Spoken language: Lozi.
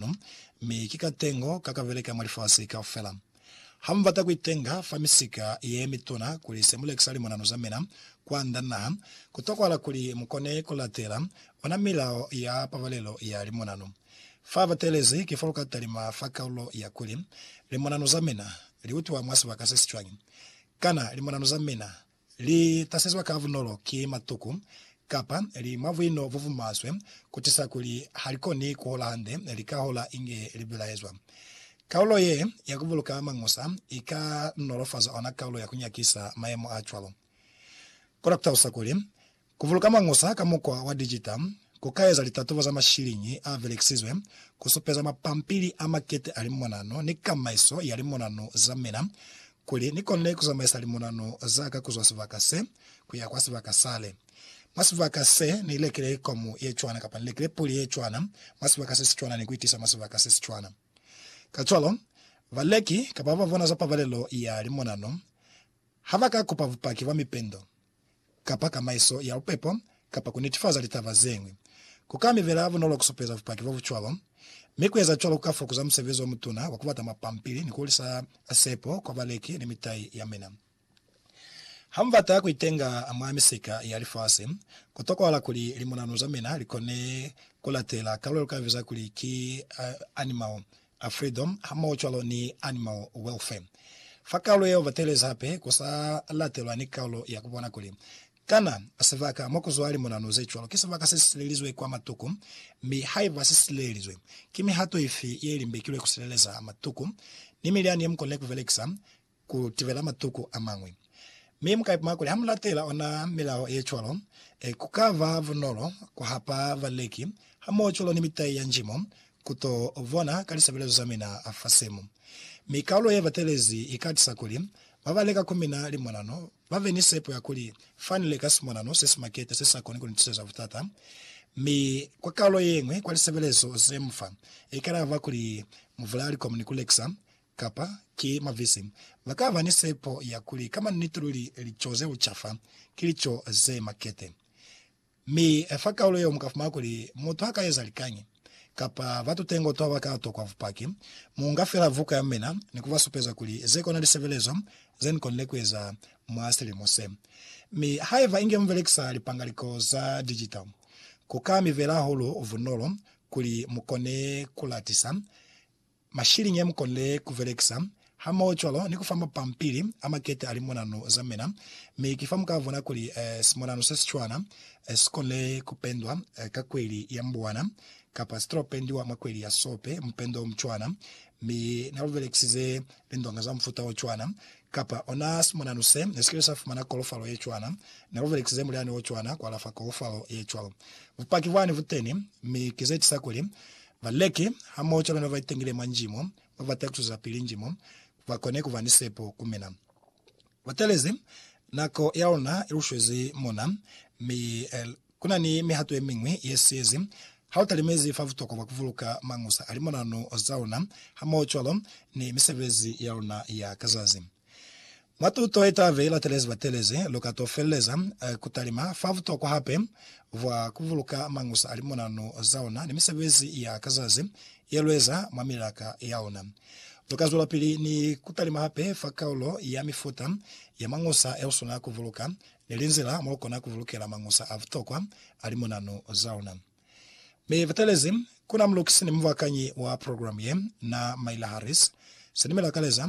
Mulimu, mi ki katengo ka ka beleka mwa lifasi kaufela. Ha mu bata ku itenga fa misika ye mituna kuli se mu lekisa limonano za mina kwa nda naha, ku tokwahala kuli mu kone ku latela ona milao ya pabalelo ya limonano. Fa ba teelezi, ki fa lu ka talima fa kaulo ya kuli, Limonano za mina li utwa mwa sibaka se si cwañi? Kana limonano za mina Li tasezwa ka bunolo ki matuku, kapa li mwa buino bo bumaswe, kutisa kuli ha li koni kuhola hande, li ka hola inge li bilaezwa. Kaulo ye ya kubuluka mañusa i ka nolofaza ona kaulo ya kunyakisa mayemo a cwalo. Kona kutalusa kuli, Ku buluka mañusa ka mukwa wa dijita ku ka eza litatubo za mashiliñi a belekisizwe ku supeza mapampili a makete a limonano ni kamaiso ya limonano za mina kuli ni konile ku zamaisa limonano za ka ku zwa sibaka se ku ya kwa sibaka sale. Mwa sibaka se, ni lekile komu ye cwana kapa ni lekile puli ye cwana mwa sibaka se si cwana ni ku i tisa mwa sibaka se si cwana. Kacwalo, baleki kapa ba ba bona za pabalelo ya limonano ha ba ka kupa bupaki bwa mipendo kapa kamaiso ya bupepo, kapa ku netifaza litaba zeñwi. Ku ka mi bela bunolo ku supeza bupaki bo bu cwalo, mi ku eza cwalo ku ka fokuza musebezi o mutuna wa ku bata mapampili ni ku hulisa sepo kwa baleki ni mitai ya mina. Ha mu bata ku itenga mwa misika ya lifasi, ku tokwahala kuli limunanu za mina li kone ku latela karolo lu ka biza kuli ki animal a Freedom hamohocwalo ni Animal Welfare. Fa kaulo yeo batelezi hape ku sa latelwa ni kaulo ya kubona kuli kana sibaka mo ku zwa limonano ze cwalo ki sibaka se silelizwe kwa matuku, mi haiba si silelizwe, ki mihato ifi ye limbekilwe ku sileleza matuku ni milyani ye mu konile ku belekisa. ku tibela matuku a mañwi. Mi mu ka ipama kuli ha mu latela ona milao ye cwalo, ku ka ba bunolo ku hapa baleki hamohocwalo ni mitai ya njimo ku to bona ka lisebelezo za mina fa simu. Mi kaulo ye batelezi i ka tisa kuli ba ba leka ku mina limonano ba be ni sepo ya kuli fa ni leka simonano se si maketa se sa koni ku ni tiseza butata. Mi kwa kaulo ye ñwi kwa lisebelezo ze mu fa, i ka laba kuli mu vula likomu ni ku lekisa Kapa, ki mavisi. Ba ka ba ni sepo ya kuli ka maniti luli lico ze ucafa ki lico ze makete. Mi fa kaulo yeo mu ka fumana kuli mutu ha ka eza likañi, kapa batu tengo to ba ka tokwa bupaki, mu nga fela vuka ya mina ni ku ba supeza kuli ze kona lisebelezo ze ni konile ku eza mwa silimo se. Mi haiba inge mu belekisa lipangaliko za digital, ku ka mi bela hahulu bunolo kuli mu kone ku latisa Mashiliñi ya mukonile ku belekisa, hamoho cwalo ni ku fa mapampili a makete a limonanu za mina, mi ki fa muka bona kuli simonanu se si cwana si konile ku pendwa ka kweli ya mbuwana, kapa si tolo pendiwa mwa kweli ya sope, mupendo o mucwana, mi na lu belekisize lindonga za mufuta o cwana, kapa ona simonanu se ne si kile sa fumana kolofalo ye cwana, na lu belekisize mulyani o cwana ku alafa kolofalo ye cwalo. Bupaki bwani bu teni, mi ki ze tisa kuli Baleki hamoho cwalo ni babaitangile mwa njimo babata kucwezapili njimo bakone kuba ni sepo ku mina. Batalezi nako yaluna ilushwezi mona, mi kunani mihato yemiñwi yesiyezi hautalimezi fa butokwa bwa kubuluka mañusa a limonano zaluna hamoho cwalo ni misebezi yaluna ya ka zazi. Mwa tuto ye t'a vei latelezi batelezi, lu ka t'o feleleza ku talima fa butokwa hape bwa ku buluka mañusa a limonanu za ona ni misebezi ya ka zazi ye lu eza mwa milaka ya ona. Lu ka zwelapili ni ku talima hape fa kaulo ya mifuta ya mañusa ye u swanela ku buluka ni linzila mo lu kona ku bulukela mañusa a butokwa a limonanu za ona. Mi batelezi, ku na mulukisi ni mubakanyi wa program ye, na Myla Harris. Se ni mi lakaleza